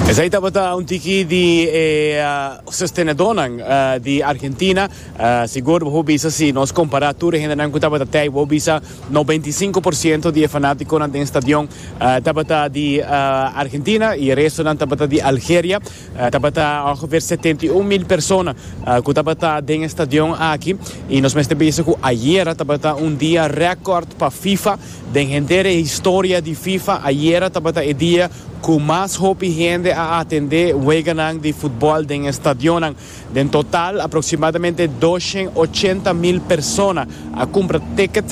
Esei tabata un tiki di e sostenedonan di Argentina. Sigur bo por bisa si nos kompará tur e hendenan ku tabata tei, bo bisa noventa i sinku por siento di e fanátikonan den stadion tabata di Argentina i e restonan tabata di Algeria. Tabata ongeveer setenta i un mil persona ku tabata den e stadion aki i nos mester bisa ku ayera tabata un dia rèkòrt pa Fifa Den henter e historia di fifa, ayera tabata e dia cu mas hopi hende a atende weganan di futbol den e stadionnan. Den total, aproximadamente doshen ochenta mil persona a cumpra ticket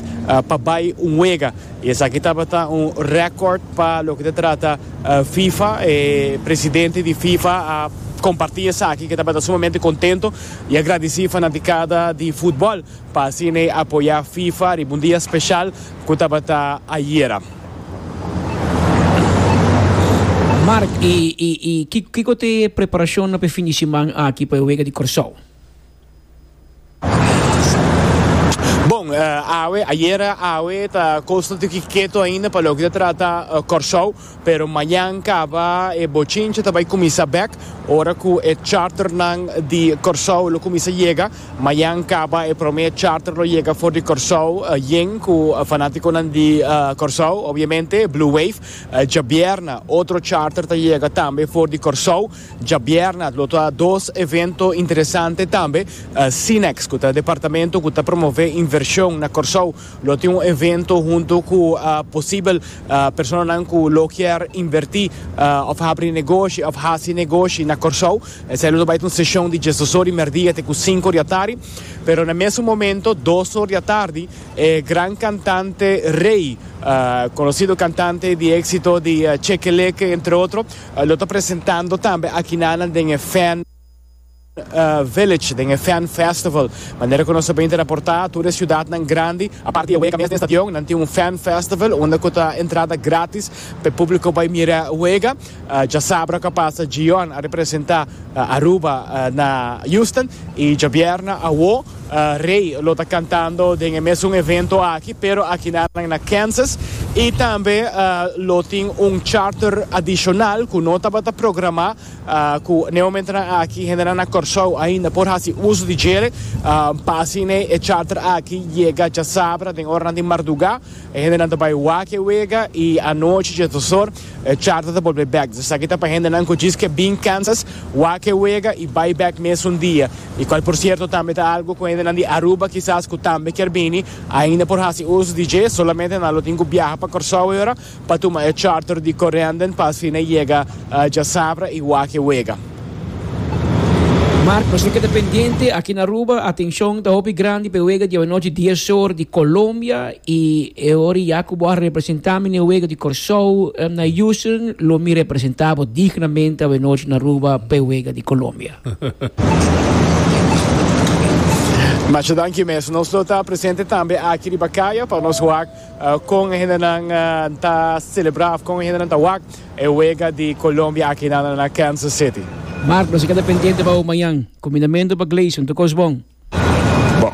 pa bay un wega. Y esaki tabata un record pa loke ta trata fifa. E presidente di fifa a comparti esaki, ke tabata sumamente contento y a gradici fanaticada di futbol. Pa asina e apoyá FIFA riba un dia speshal ku tabata ayera. Mark, i kiko ta e preparashonnan pa e fin di siman aki pa e wega di Kòrsou? Bon, awe, ayera awe ta Coastal ta Kikito ainda pa loke ta trata Kòrsou. Pero mañan kaba e bochinche ta bai kuminsá bèk ora ku e charternan di Kòrsou lo kuminsá yega. Mañan kaba e promé charter lo yega for di Kòrsou yen ku fanátikonan di Kòrsou obiamente Blue Wave. Djabièrna otro charter ta yega tambe for di Kòrsou. Djabièrna lo ta dos evento interesante tambe. Sinex ku ta e departamento ku ta promové invershon na Kòrsou Lo tin un evento hunto cu posibel personanan cu lo kier inverti of habri negoshi of haci negoshi na Corsou. Esey lo ta bay ta un seshon di diesdos or di merdia te cu sinku or di atari. Pero na mesun momento dos or di atardi e gran cantante Rey, conocido cantante di exito di Cheque Leque entre otro, lo ta presentando tambe akinanan den e Fan. Village den e Fan Festival. Manera ku nos a bini raportá, tur e siudatnan grandi, aparte di e wega mes den stadion, nan tin un Fan Festival unda ku ta entrada grátis pa e públiko bai mira e wega. Djasabra ku a pasa Gion a representá Aruba na Houston i djabièrnè awó Rey lo ta kantando den e mesun evento aki pero akinanan na Kansas i tambe lo tin un charter adishonal ku no tabata programá. Ku n'e momentunan aki hendenan na Kòrsou ainda por hasi uso di djere. Pa asin'e e charter aki yega djasabra den oranan di mardugá. E hendenan ta bai wak e wega i anochi dje dos or e charter ta bolbe bèk. Esaki ta pa hendenan ku djis ke bin Kansas wak e wega i bai bèk mesun dia. I kual por sierto tambe ta algu ku hendenan di Aruba kisas ku tambe kier bini ainda por hasi uso di dje. Solamente nan lo tin ku biaha pa Kòrsou ayora. Pa tuma e charter di Corendon pa asina yega djasabra y wak e wega. Marcos, Lo ke ta pendiente aki na Aruba, atencion ta hopi grandi pa e wega diabanochi dies or di Colombia y e ora ya cu bo a representa mi na e wega di Corsou na Houston, lo mi representa bo dignamente awenochi na Aruba pa e wega di Colombia. Masha danki mes. Nos lo ta presente tambe aki riba caya pa nos wak Kon e hendenan ta selebrá òf kon e hendenan ta wak e wega di Colombia akinan na na Kansas City? Mark, nos a keda pendiente pa hu mañan. Kombinamentu pa Gleison ta kos bon. Bon.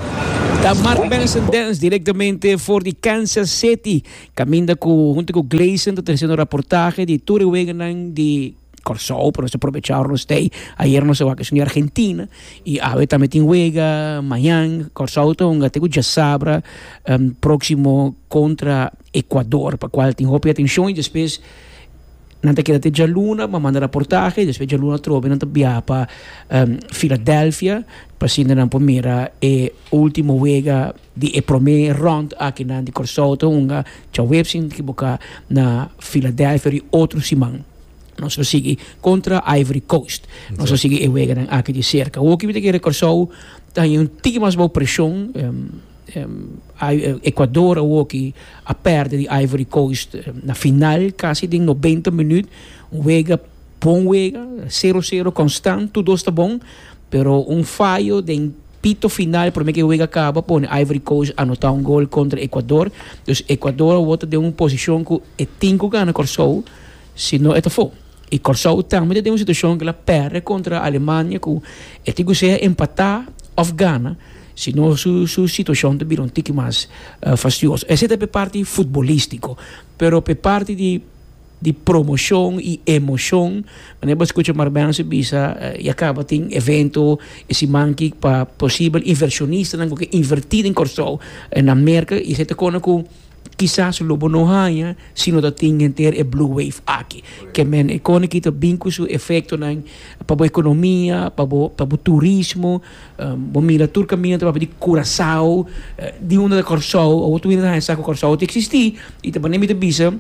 Ta Mark Benson Dance direktamente for di Kansas City kaminda ku huntu ku Gleison ta trese nos raportahe di tur e weganan di. Kòrsou pa nos ta probecha ora nos stay. Ayer nos a wak esun di Argentina i awe tambe tin wega mañan. Kòrsou ta hunga te ku djasabra próksimo kontra Ekuador, pa kual tin hopi atenshon i despues nan ta keda te djaluna pa manda raportahe. Despues djaluna atrobe nan ta biaha pa Filadelfia pa asina nan por mira e último wega. Di e promé rond aki nan di Kòrsou ta hunga djaweps si no ta kiboká na Filadelfia di otro siman. Nos lo sigui kontra Ivory Coast. Nos lo sigui e weganan aki di serka. Hopi mi ta kere Kòrsou ta haña un tiki mas bou preshon. Ekuador awoki a pèrdè di Ivory Coast na final, kasi den nobenta minüt. Un wega. Bon wega, sero sero konstant, tur dos ta bon, pero un fayo den pito final promé ku e wega kaba pone Ivory Coast anotá un gol kontra Ekuador. Dus Ekuador awor ta den un posishon ku e tin ku gana Kòrsou sino e ta for. I Kòrsou tambe ta den un situashon ku el a pèrdè kontra Alemania ku e tin ku sea empatá òf gana sino su su situashon ta bira un tiki mas fastioso. Esei ta p'e parti futbolístiko, pero p'e parti di. di promoshon i emoshon. Manera bo a skucha Marbense bisa, ya kaba tin evento e siman aki pa posibel invershonistanan ku ke invertí den Kòrsou na merka i esei ta kona ku kisas lo bo no haña si no ta tin henter e blue wave aki. Ke men e kona aki ta bin ku su efektonan pa bo ekonomia, pa bo turismo. Bo mira tur caminda ta papia di Curaçao, di unda ta Corsou, awo tur mi no ta haña sa cu Corsou ta existi, y ta manera mi ta bisa,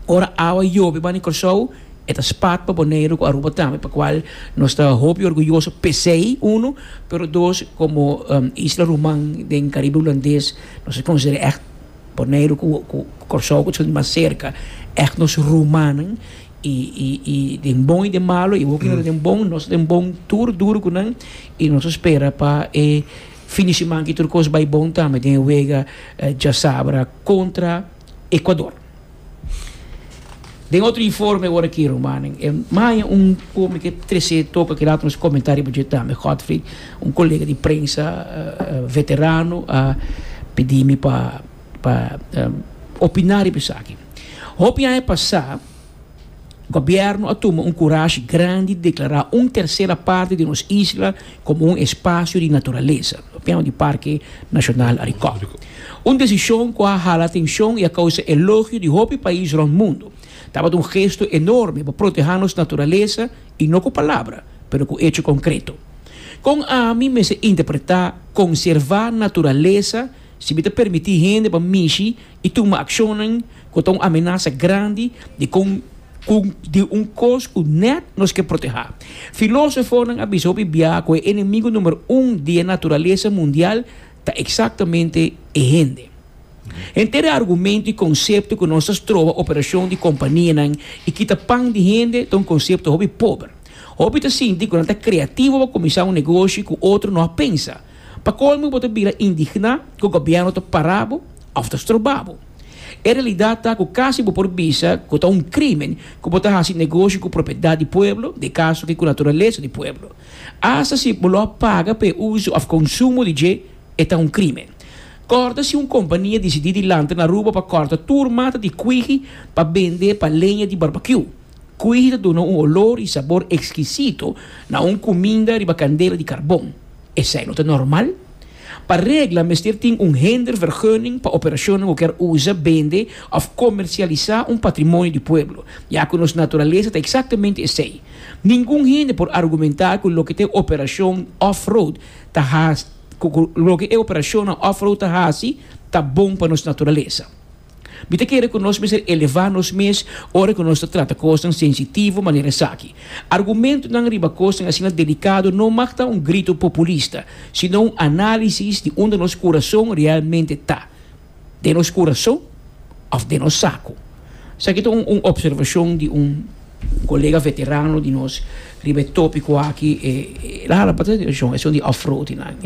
ora awa yobi bani Corsou, e ta spat pa Boneiru cu Aruba tambe, pa cual nos ta hopi orguyoso pesey, uno, pero dos, como isla Roman den Caribe Hulandes nos ta considera echt. Boneiru ku Kòrsou ku ta sinti mas serka èk nos rumannan i i i den bon i den malu i hopi den bon nos ta den bon tur duru ku nan i nos ta spera pa e fin di siman aki tur kos bai bon tambe den e wega djasabra kontra Ekuador. Den otro informe ora ki rumannan e maya un hombre ke trese toka kilat nos komenta riba dje tambe Godfrey un kolega di prensa veterano a pidi mi pa pa opina riba esaki hopi aña pasa gobièrnu a tuma un kurashi grandi deklará un tersera parti di nos isla komo un espasio di naturalesa, tema di Parke Nashonal Arikòp. Un desishon ku a hala atenshon i a kousa elogio di hopi pais rònt mundu. Tabata un gesto enorme pa protehá nos naturalesa, i no ku palabra, pero ku echo konkreto. Kon ami mester interpretá konservá naturalesa si mi ta permití hende pa mishi i tuma akshonnan ku ta un amenasa grandi di kon ku di un kos ku nèt nos ke protehá. Filósofonan a bisa hopi biaha ku e enemigu número un di e naturalesa mundial ta eksaktamente e hende. Henter e argumentu i konsepto ku nos ta stroba operashon di kompanianan i kita pan di hende ta un konsepto hopi pober. Hopi ta sinti ku nan ta kreativo pa kuminsá un negoshi ku otro no a pensa. Pa colmo bo ta bira indigná cu gobierno ta para bo of ta stroba bo. E realidad ta cu casi bo por bisa cu ta un crimen cu bo ta haci negoshi cu propiedad di pueblo, di caso aki cu naturaleza di pueblo. Hasta si bo lo a paga pa e uso of consumo di dje, e ta un crimen. Corda si un compania dicidi di lanta na Aruba pa corta tur mata di cuiji pa bende pa leña di barbecue. Cuy ta duna un olor y sabor exquisito na un cuminda riba candela di carbon. Esey no ta normal. Pa regla mester tin un Hindervergunning pa operacionnan cu kier uza, bende of comercialisa un patrimonio di pueblo, ya cu nos naturalesa ta exactamente esey. Ningun hende por argumenta cu loke ta e operacion off-road ta haci, cu loke e operacionnan off-road ta haci ta bon pa nos naturalesa. Mi ta kere ku nos mester elevá nos mes ora ku nos ta trata kosnan sensitivo manera esaki. Argumentunan riba kosnan asina delikado no mag ta un grito populista, sino un análisis di unda nos kurason realmente ta, den nos kurason òf den nos saku. Esaki ta un opservashon di un kolega veterano di nos riba e tópiko aki, el a hala pa atenshon, e asuntu di off-roadnan.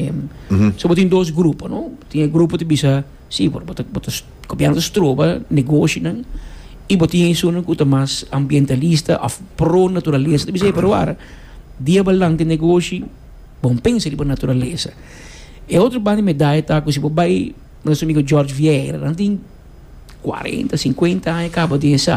So bo tin dos grupo, tin e grupo ta bisa. Sí, pero bo ta, bo ta, gobièrnu ta stroba negoshinan i bo tin esunnan ku ta mas ambientalista òf pro naturalesa. Ta bisa e pero wara di e balanti negoshi bon pensa riba naturalesa. E otro banda di medaya ta ku si bo bai nos amigo George Vieira, nan tin kuarenta, sinkuenta aña kaba den e sa.